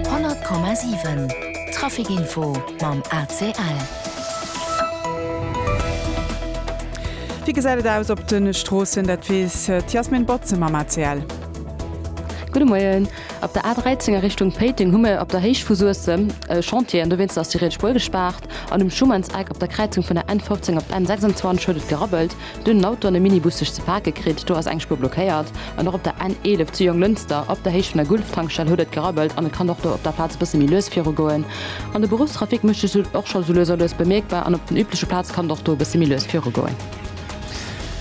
100,7 Trafic-Info mam ACL. Wéi gesäit et aus op de Stroossen? Dat weess d'Yasmin Botze mam ACL. Gudde Moien. Op der A 13 a Richtung Péiteng hu mir op der Héicht vu Suessem e Chantier an dowéinst ass déi riets Spuer gespaart. An um Schumannseck op der Kräizung vun der N 15 op d'N 26 huet et gerabbelt. Do hunn Autoen e Minibus sech ze pake kritt, do ass eng Spuer blockéiert an och op der N 11 zu Jonglënster op der Héicht vun der Gulf-Tankstell huet et gerabbelt an et kann och do op der Plaz e bësse méi lues virugoen. An de Beruffstrafic mécht sech esou och scho sou lues a lues bemierkbar an op den übleche Plaze kann et och do e bësse méi lues virugoen.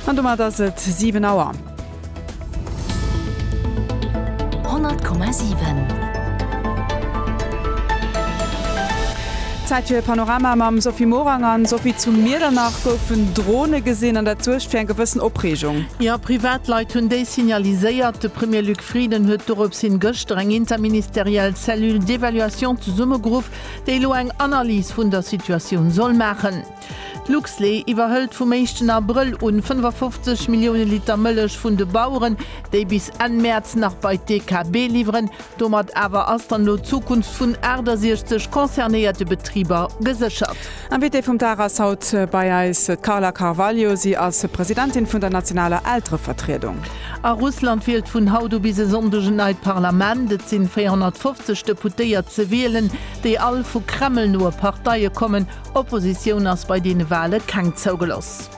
An domat ass et 7 Auer. Zäit fir e Panorama mam Sophie Morang an Sophie, zu Miedernach goufen Drone gesinn an dat suergt fir eng gewëssen Opreegung. Jo, Privatleit hunn déi signaliséiert. De Premier Luc Frieden huet dorops hin gëschter eng interministeriell Cellule d'évaluation zesummegeruff, déi elo eng Analys vun der Situatioun soll maachen. D'Luxlé iwwerhëlt vum éischten Abrëll un 55 Millioune Liter Mëllech vun de Baueren, déi bis Enn Mäerz nach bei d'DKB liwweren. Domat awer ass dann elo d'Zukunft vun 68 concernéierte Betriber geséchert. Invitée vum Dag ass haut bei eis d'Carla Carvalho. Si ass Presidentin vun der nationaler Elterevertriedung. A Russland wielt vun haut u bis e Sonndeg en neit Parlament. Et sinn 450 Deputéiert ze wielen, déi all vu Kreml-noe Parteie kommen. Oppositioun ass bei deene Wale keng zougeloss.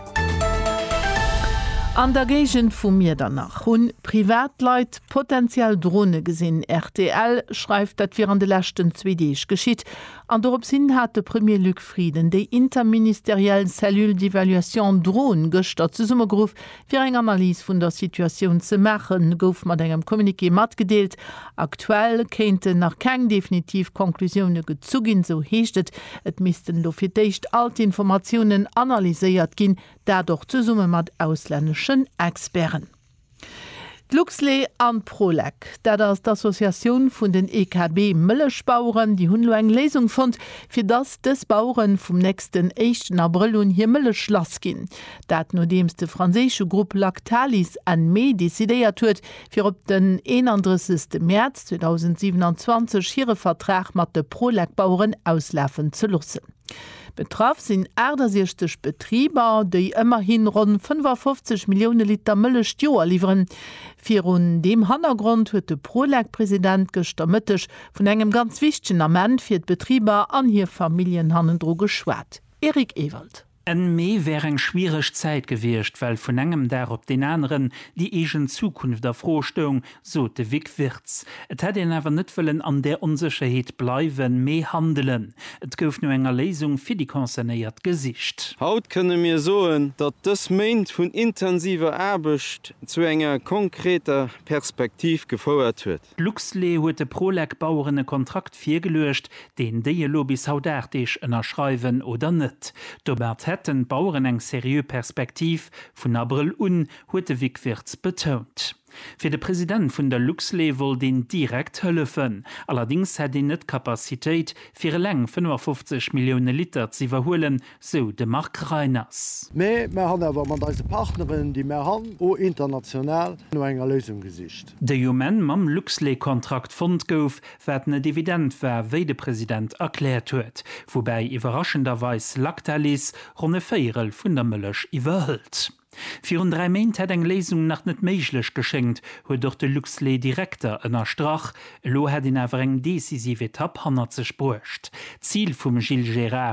An der Géigend vu Miedernach hunn Privatleit potentiell Drone gesinn. Rtl schreift, dat wier an de leschten zwee Deeg geschitt an dorops hin hat de Premier Luc Frieden déi interministeriell Cellule d'évaluation Drone gëschter zesummegeruff, Fir eng Analys vun der Situatioun ze maachen, gouf mat engem Communiqué matgedeelt. Aktuell kéinten nach keng definitiv Conclusioune gezu ginn, sou heescht et. Et missten elo fir d'éischt all d'Informatiounen analyséiert ginn, dat och zesumme mat auslänneschen Experten. D'Luxlait an d'Prolec, dat ass d'Associatioun vun den EKB Mëllechbaueren, déi hunn elo eng Léisung fonnt, fir dass dës Baueren vum nächsten éischten Abrëll un hir Mëllech lass ginn. Dat nodeems de franséische Grupp Lactalis N-Me decidéiert huet, fir op den 31 Mäerz 2027 hire Vertrag mat de Prolec-Baueren auslafen ze loossen. Betraff sinn 68 Betriber, déi ëmmerhi ronn 55 Millioune Liter Mëllech d'Joer liwweren. Virun deem Hannergrond huet de Prolec-President gëschter Mëtteg vun engem ganz wichtegen Ament fir d'Betriber an hir Familljen hannendru geschwat. Eric Ewald. Enn Mee wär eng schwiereg Zäit gewiescht, well vun engem Dag op deen aneren déi eegen Zukunft a Fro stoung, sot de Vic Wirtz. Et hätt een awer net wëllen an där Onsécherheet bleiwen, mee handelen. Et gouf no enger Léisung fir déi Concernéiert gesicht. Haut kënne mir soen, datt dës Méint vun intensiver Aarbecht zu enger konkreter Perspektiv gefouert huet. D'Luxlait huet de Prolec-Baueren e Kontrakt virgeluecht, deen déi elo bis haut 8 Deeg ënnerschreiwen oder net. Domat hätten d'Baueren eng seriö Perspektiv, vun Abrëll un, huet de Vic Wirtz betount. Fir de President vun der Luxlé wollt een direkt hëllefen. Allerdéngs hätt een net d'Capacitéit, fir eleng 55 Millioune Liter z'iwwerhuelen, sou de Marc Reiners. Mee mer han awer mat eise Partneren, déi mer han, o international no enger Léisung gesicht. Déi um Enn mam Luxlé-Kontrakt fonnt gouf, wat net evident war, wéi de President erkläert huet. Woubäi iwwerraschenderweis Lactalis ronn e Véierel vun der Mëllech iwwerhëlt. Virun dräi Méint hätt eng Léisung nach net méiglech geschéngt, huet och de Luxlait-Direkter ënnerstrach. Elo hätt een awer eng decisiv Etapp hannert sech bruecht. D'Zil vum Gilles Gérard,